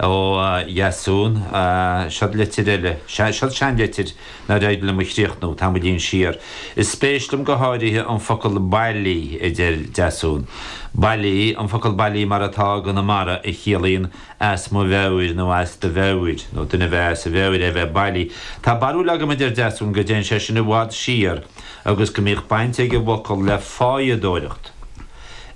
Ó Dheasún, Siod litir eile. Sea, siod seanlitir nár éirigh liom a chríochnú, tamaillín siar. Is spéis liom go háirithe an focal 'bailí', a deir Deasún. Bailí, an focal 'bailí' mar atá i gConamara, a chiallaíonn 'as mo mheabhair' nó 'as do mheabhair', nó duine a bheith as a mheabhair é a bheith bailí. Tá barúil agam, a deir Deasún, go dtéann sé sin i bhfad siar agus go mbíodh baint ag an bhfocal le fáidheadóireacht.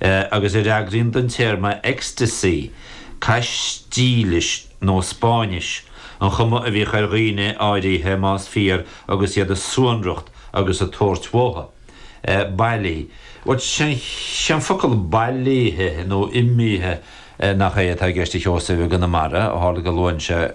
Agus a fhreagraíonn don téarma 'ecstasy'. Caistílis nó Spáinnis an chuma a bhíodh ar dhaoine áirithe, más fíor, agus iad a suanracht agus ag tabhairt uathu. Bailí. Sé an focal bailithe nó imithe nach é atá i gceist ag Seosamh i gConamara, ó tharla go luann sé,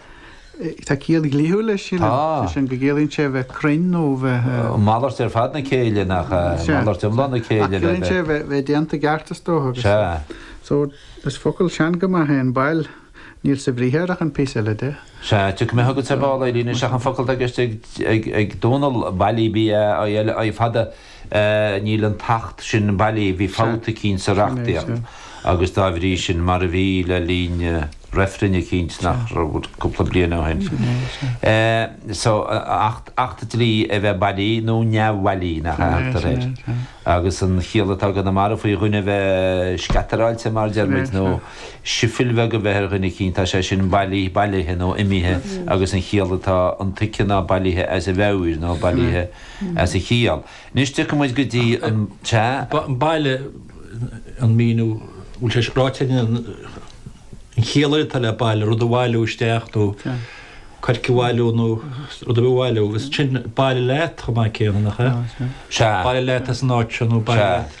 Tá ciall dhlíthiúil leis sin, sé sin go gciallaíonn sé bheith cruinn nó bheith. Malairt ar fad na céille nach malairt iomlán na céille. Ciallaíonn sé bheith déanta i gceart is dócha. Sea. So, is focal sean go maith é an bail, níl sa bhriathar ach an píosa eile de. Sea, tiocfaidh mé chugat ar ball, a Eilín, ach an focal atá i gceist ag Dónall, bailí, B-a-i-l-i, fada. Níl an tAcht sin bailí, bhí fabht eicínt sa reachtaíocht agus dá bhrí sin, mar a bhí le linn reifrinn eicínt nach raibh cúpla bliain ó shin. So, acht, acht dlí a bheith bailí nó neamhbhailí, nach ea a thugtar air? Agus an chiall atá i gConamara faoi dhuine a bheith scattaráilte, mar a deir muid, nó sifil bheag a bheith ar dhuine eicínt, tá sé sin bailí, bailithe nó imithe agus an chiall atá intuigthe ná bailithe as a mheabhair nó bailithe as a chiall. Anois tiocfaidh muid go dtí bailigh, an míniú a bhfuil sé ráite ag an an chiall atá le bailigh, rud a bhailiú isteach nó coirce a bhailiú nó rud ar bith a bhailiú agus ansin bailigh leat chomh maith céanna, nach ea? Sea. Bailigh leat as an áit seo nó bailigh leat.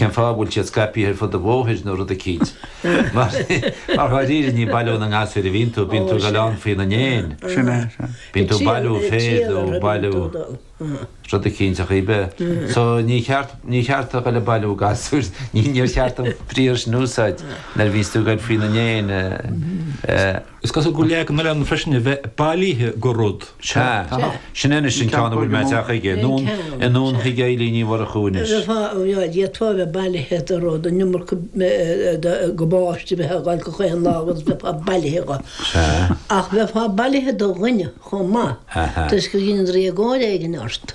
Cén fáth a bhfuil siad scaipithe ar fud an bhóthair nó rud eicínt. Mar dháiríre ní ag bailiú na ngasúr a bhíonn tú, bíonn tú ag goil ann faoina ndéin. Sin é, sin é. Bíonn tú ag bailiú féir nó ag bailiú rud eicínt ar chaoi ar bith. So níor cheart, níor cheart a dhul ag bailiú gasúir, níor cheart an briathar sin a úsáid nuair a bhíonns tú ag goil faoina ndéin. Is cosúil go bhfuil leagan eile ann freisin a bheith bailithe de rud. Sea. Sin anois an ceann a bhfuil mé ag teacht chuige. Anonn chuig Eilín Ní Mhurchú anois. D'fhéadfá a bheith bailithe do rud, an iomarca gabáiste a bheith agat gach aon lá agus bheifeá bailithe dho. Ach bheifeá bailithe do dhuine chomh maith toisc gur dhein sé éagóir éigin ort.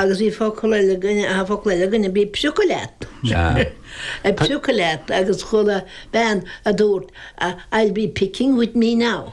Agus bhí focal eile againn, aha, focal eile againn, bí ag priocadh leat. Ag priocadh leat agus chuala bean a dúirt, I'll be picking with me now.